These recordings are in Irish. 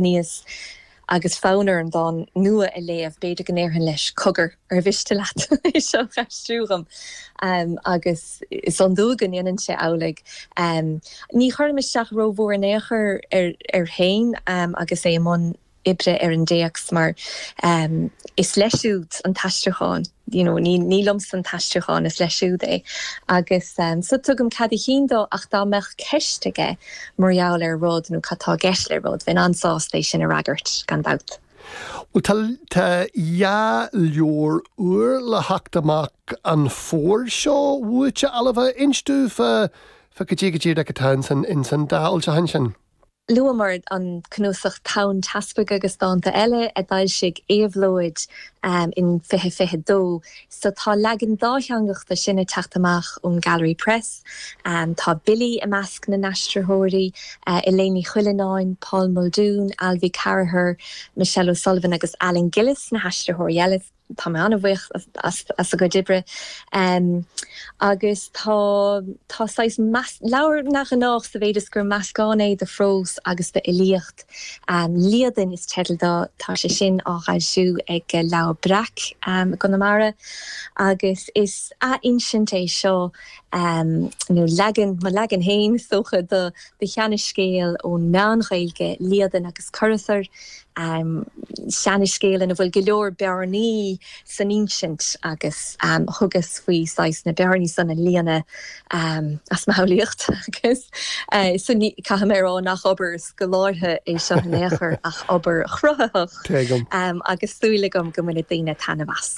aníos agus fonn orm dán nua a léamh, b'fhéidir go ndéarfainn leis, Cogar, ar mhiste leat é seo a aistriú dhom? agus is iondúil go ndéanann sé amhlaidh. Ní chuirim isteach rómhór in aon chor air féin agus é i mbun oibre ar an dtéacs mar is leis siúd an t-aistriúchán. you know ní ní liomsa an t-aistriúchán, is leis siúd é. Agus so tugaim cead a chinn dó ach dá mbeadh ceist aige mar gheall ar rud nó cad tá i gceist le rud, bheinn an-sásta é sin a fhreagairt, gan dabht. Bhuel tá, tá dhá leabhar úr le theacht amach an fómhar seo uait, a Ailbhe, inis domh fá, fá cad é go díreach atá ins an, ins an dá fhoilseachán sin? Luamar an cnuasach Tonn Teaspaigh agus Dánta Eile a d'fhoilsigh Éabhlóid in 2022, so tá leagan dátheangach de sin ag teacht amach ón Gallery Press. Tá Billy i measc na n-aistritheoirí, Eiléan Ní Chuilleanáin, Paul Muldoon, Alvy Carragher, Michelle O'Sullivan agus Alan Gillis na haistritheoirí eile. tá mé an-bhuíoch as a gcuid oibre agus tá tá saghas leabhar neamhghnách sa mhéid is gur meascán é de phrós agus d'fhilíocht. Líadan is teideal dó, tá sé sin á dh'fhoilsiú ag Leabhar Breac i gConamara agus is athinsint é seo nó leagan, mo leagan féin is dócha, do sheanascéal ón Meán-Ghaeilge, Líadan agus Cuirithir. Seanascéal ina bhfuil go leor bearnaí san insint agus thugas faoi saghas na bearnaí san a líonadh as mo shamhlaíocht agus sin, caithfidh mé a rá, nach obair scolártha é seo in aon chor ach obair chruthaitheach agus súil agam go mbainfidh daoine taitneamh as.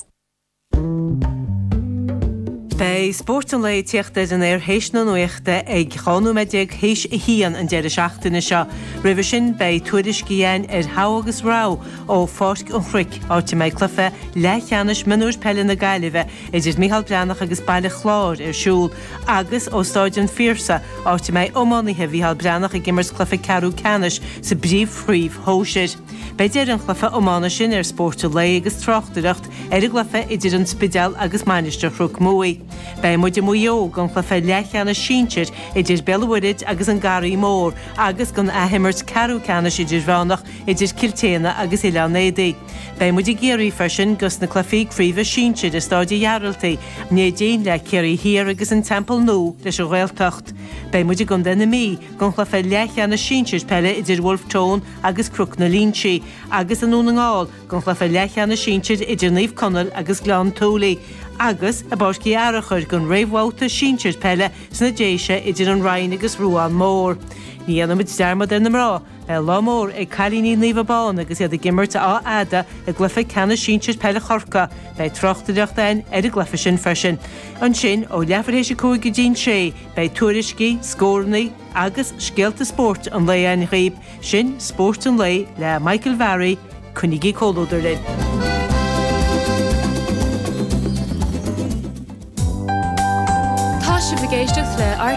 Beidh spórt an lae ag tíocht ar an aer théis na nuachta ag 12 nóiméad théis a haon an deireadh seachtaine seo. Roimhe sin beidh tuairisc againn ar Togha agus Rogha ó Pháirc an Chnoic, áit a mbeidh cluiche leathcheannais mionúir peile na Gaillimhe idir Micheál Breathnach agus Baile Chláir ar siúl, agus ó Stáid an Phiarsaigh, áit a mbeidh iománaithe Mhicheál Breathnach ag imirt cluiche ceathrú ceannais sa bPríomhchraobh Shóisir. Beidh deireadh an chluiche iomána sin ar Spórt an Lae agus tráchtaireacht ar an gcluiche idir an Spidéal agus Mainistir Chnoc Muaidh. Beidh muid i Maigh Eo don chluiche leathcheannais sinsir idir Béal an Mhuirthid agus an Garraí Mór agus don athimirt ceathrú ceannais idirmheánach idir Cill tSéadhna agus Oileán Éadaí. Beidh muid i gCiarraí freisin dos na cluichí craoibhe sinsir i Stáid an Ghearaltaigh, Neidín le Ciarraí Thiar agus an Teampall Nua leis an Ghaeltacht. Beidh muid i gContae na Mí don chluiche leathcheannais sinsir peile idir Bhulf Tón agus Cnoc na Loingsigh, agus i nDún na nGall, don gcluiche leathcheannais sinsir idir Naomh Conaill agus Gleann tSúilí, agus i bPáirc Uí Fhearachair don réamhbhabhta sinsir peile sna Déise idir an Rinn agus Ruán Mhór. Ní dhéanfaimid dearmad ar na mná. Beidh lá mór ag cailíní Naomh Abán agus iad ag imirt Achadh Fhada i gcluiche ceannais sinsir peile Chorcaí. Beidh tráchtaireacht againn ar an gcluiche sin freisin. Ansin, ó leathuair théis a cúig go dtína sé, beidh tuairiscí, scórannaí, agus scéalta spóirt an lae againn dhaoibh, sin Spórt an Lae le Michael Varry, coinnigí comhluadar linn! Tá sibh ag éisteacht le RTÉ